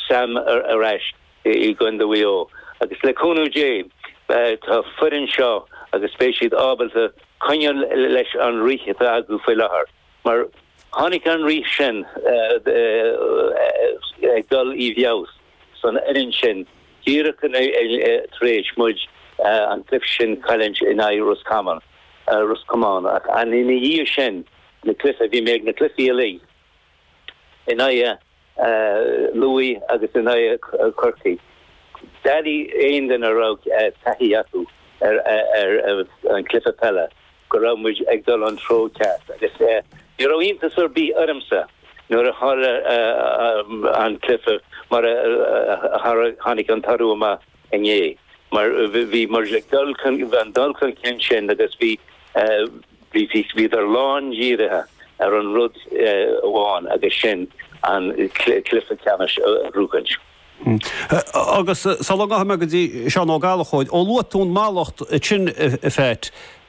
Sam ar ais i gCondae Mhaigh Eo agus le cúnamh Dé tá foireann seo agus beidh siad ábalta coinneáil leis an rith atá acu faoi láthair mar tháinig an rith sin ag dul i bhfeabhas san fhoireann sin díreach tar éis muid an cluiche sin a chailliúint in aghaidh Ros Common, Ros Comáin, ach ina dhiaidh sin na cluiche, bhí mé ag na cluichí uilig. in aghaidh Lúmhaigh agus in aghaidh Chorcaí. D'fheicfeadh aon duine a raibh taithí acu ar an chluiche peile go raibh muid ag dul an treo ceart agus ní raibh iontas ar bith ormsa nuair a tharla an cluiche mar a tharla, tháinig an toradh amach. inné mar bhí muid ag dul, bhí an dul chun cinn sin agus bhí bhí bhí bhíodar lán dhírithe ar an rud amháin agus sin an cluiche ceannais a ghnóchaint. Agus sula ngabhfaidh mé go dtí Seán Ó Gallchóir, ó luaigh tú an mallacht sin a Pheait,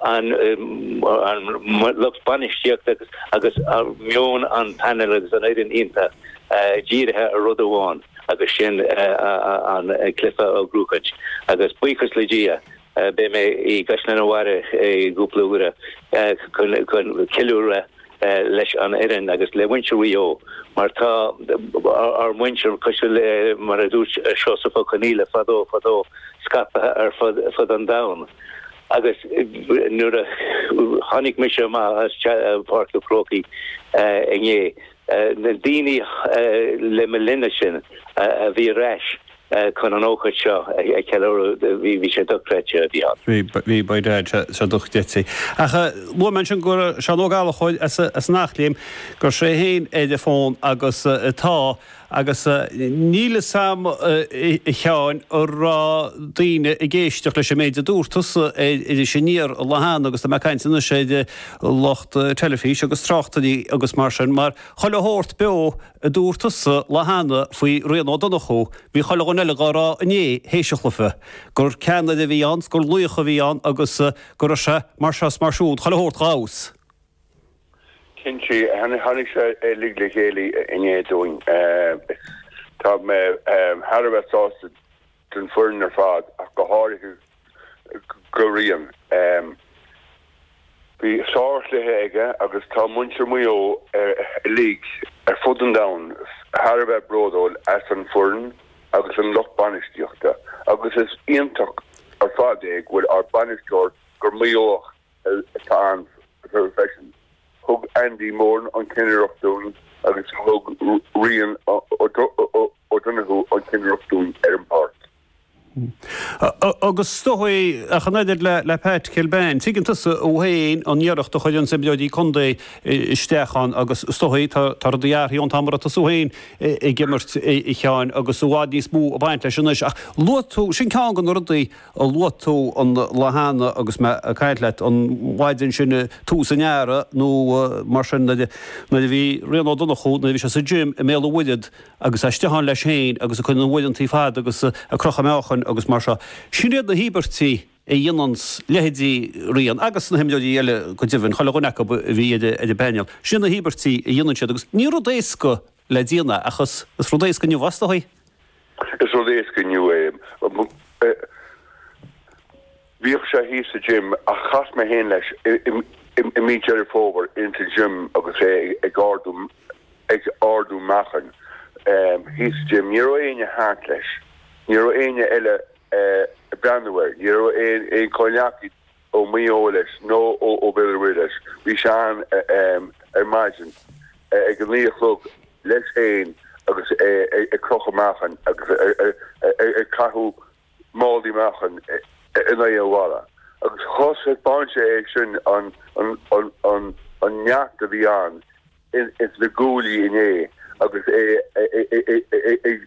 an lucht bainistíochta agus meon an phainéil agus an fhoireann iontach dírithe ar rud amháin agus sin an cluiche a ghnóchaint agus buíochas le Dia beidh mé i gCaisleán an Bharraigh i gcúpla uair chun ceiliúradh leis an fhoireann agus le muintir Mhaigh Eo, mar tá ár muintir cois baile, mar a dúirt Seosamh Ó Conaíle, fadó, fadó scaipthe ar fud an domhain. Agus nuair a tháinig mise amach as Páirc an Chrócaigh inné, na daoine le mo linnse a bhí ar ais chun an ócáid seo a cheiliúradh. Bhí sé dochreidte a bheith ann. Bhí, by dad, sé dochreidte. Ach luaigh mé ansin go bhfuil Seán Ó Gallchóir as an Eachléim, go bhfuil sé féin ar an bhfón agus tá, agus níl fhios a'm a Sheáin an raibh daoine ag éisteacht leis an méid a dúirt tusa ar Iris Aniar an lá cheana agus tá mé ag caint anois ar lucht teilifís agus tráchtairí agus mar sin mar chuile shórt beo a dúirt tusa an lá cheana faoi Rian Ó Donnchú, bhí chuile dhuine eile dhá rá inné théis an chluiche, gur ceannaire a bhí ann 's gur laoch a bhí ann agus go raibh sé mar seo 's mar siúd, chuile shórt dhá fheabhas. Cinnte, tháinig sé uilig le chéile inné dúinn. Tá mé thar a bheith sásta. don bhfoireann ar fad ach go háirithe do Rian. Bhí sár-chluiche aige agus tá muintir Mhaigh Eo uilig ar fud an domhain thar a bheith bródúil as an bhfoireann agus an lucht bainistíochta agus is iontach ar fad é go bhfuil ár bainisteoir gur Maigh Eoach é. Tá an fhuinneamh freisin. Thug Andy Moran an cinnireacht dúinn agus thug Ryan O'Donoghue an cinnireacht dúinn ar an páirc. Agus is dóichí ach an oiread le Pat Kilbane. Tuigeann tusa féin an iarracht a chuireann na himreoirí contae isteach ann agus is dóichí, tá rudaí athraithe ón t-am a raibh tusa féin ag imirt a Sheáin agus i bhfad níos mó ag baint leis anois. Ach luaigh tú, sin ceann de na rudaí, a luaigh tú an lá cheana agus mé ag caint leat, an mhaidin sin, tús an earraigh nó mar sin, nuair a bhí Rian Ó Donnchú, nuair a bhí sé sa gym i mBéal an Mhuirthead agus é istigh ann leis féin agus ag cur na n-uaireantaí fada agus ag crochadh meáchain agus mar seo. Sin iad na híobairtí a dhéananns leithéidí Ryan, agus na himreoirí eile go deimhin, chuile dhuine acu a bhí ar an bpainéal, sin iad na híobairtí a dhéanann siad agus ní rud éasca le déanamh, ach is rud éasca inniu fosta é. Is rud éasca inniu é. Bhíodh sé thíos sa gym ach chas mé féin leis i mí Deireadh Fómhair in sa gym agus é ag ardú, ag ardú meáchain thíos sa gym. Ní raibh éinne thart leis, ní raibh éinne eile ag breathnú air, ní raibh aon chomhghleacaí. ó Mhaigh Eo leis nó ó Bhéal an Mhuirthead leis. Bhí sé ann ar maidin ag a naoi a chlog leis féin agus é ag crochadh meáchain agus ag caitheamh málaí meáchain in aghaidh an bhalla. Agus thaispeáin sé é sin an neart a bhí ann ins na guaillí inné agus é ag.